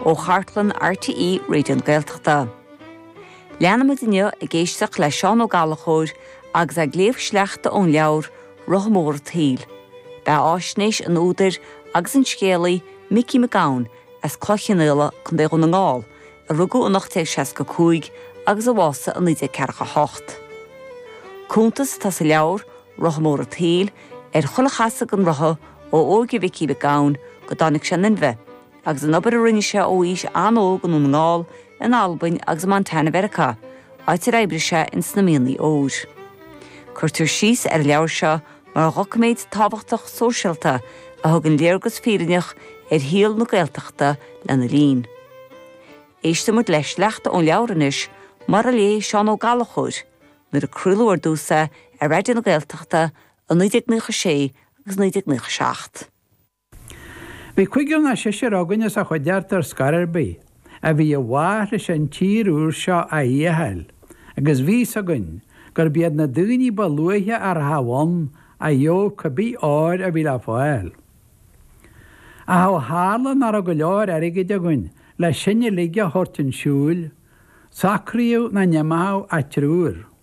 Ó chartlann RTÉ Raidió na Gaeltachta. Leanfaimid inniu ag éisteacht le Seán Ó Gallchóir agus é ag léamh sleachta ón leabhar 'Rotha Mór an tSaoil'. Beathaisnéis an údair agus an scéalaí Micí Mac Gabhann as Cloich Chionnaola, Co. Dhún na nGall, a rugadh in 1865 agus a bhásaigh in 1948. Cuntas atá sa leabhar 'Rotha Mór an tSaoil' ar chuile chasadh den rotha ó óige Mhicí Mhic Gabhann go dtáinig sé in inmhe, agus an obair a rinne sé ó aois an-óg i nDún na nGall, in Albain agus i Montana Mheiriceá, áit ar oibrigh sé in sna mianaigh óir. Cuirtear síos ar an leabhar seo mar dhoiciméad tábhachtach sóisialta a thugann léargas fírinneach ar shaol na Gaeltachta lena linn. Éistimid le sleachta ón leabhar anois, mar a léigh Seán Ó Gallchóir, nuair a craoladh ar dtús é ar Raidió na Gaeltachta i 1996 agus 1997. Bhí cúigear nó seisear againn as an chuideachta ar scor ar bith, a bhí i bhfách leis an tír úr seo a fhéacháil, agus bhí's againn gurbh iad na daoine ba luaithe a rachadh ann a gheobhadh cé bith ór a bhí le fáil. Ach ó tharla nach raibh go leor airgid againn le sinn uilig a thabhairt chun siúil, socraíodh nach n-imeochadh ach triúr.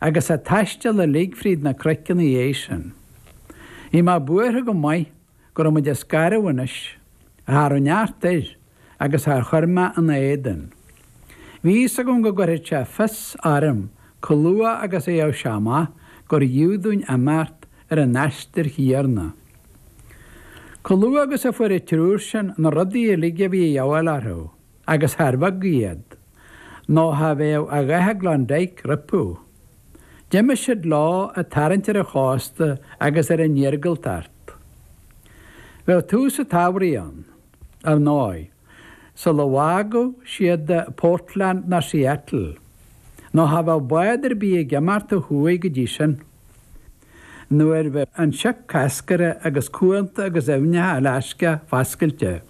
agus an taisteal uilig fríd na cnoic ina dhiaidh sin. Bhí mé buartha go maith go raibh muid ag scaradh anois, ach cha raibh neart air agus char chuir mé ina éadan. Bhí fhios agam go gcuirfeadh sé fios orm comh luath agus a gheobhadh sé amach gurbh fhiú dúinn imeacht ar an aistear chéanna. Comh luath agus a fuair an triúr sin na rudaí uilig a bhí a dhíobháil orthu, agus char bheag iad, nó cha bheadh a dhath i Klondike rompu. D'imigh siad leo ag tarraingt ar an chósta agus ar an iargúltacht. Bheadh tús a' tsamhraidh ann, ar ndóigh, sula bhfágadh siad Portland nó Seattle, nó cha bheadh bád ar bith ag imeacht ó thuaidh go dtí sin. nuair a bheadh an sioc coscartha agus cuanta agus aibhneacha Alasca foscailte.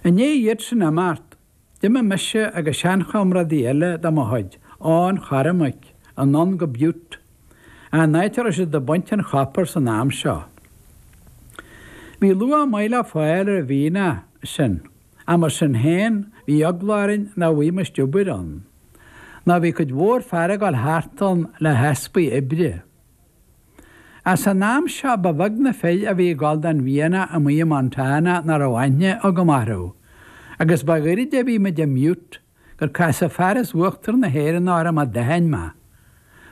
I ndiaidh iad sin imeacht, d'imigh mise agus seanchomrádaí eile de mo chuid, Eoin Chormaic, anonn go Butte, an áit a raibh siad ag baint an chopair san am seo. Bhí luach maith le fáil ar an mhianach sin. Ach mar sin féin, bhí eagla orainn nach bhfuighimist obair ann, nó bhí cuid mhór fear ag gabháil thart ann le heaspa oibre. Ach san am seo, ba bheag na fir a bhí ag gabháil don mhianach amuigh i Montana nach raibh aithne agam orthu, agus ba ghairid a bhí muid i mButte gur casadh fear as Uachtar na hÉireann orm a d'aithin mé.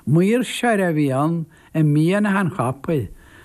Maoirseoir a bhí ann, i mianaigh an chopair,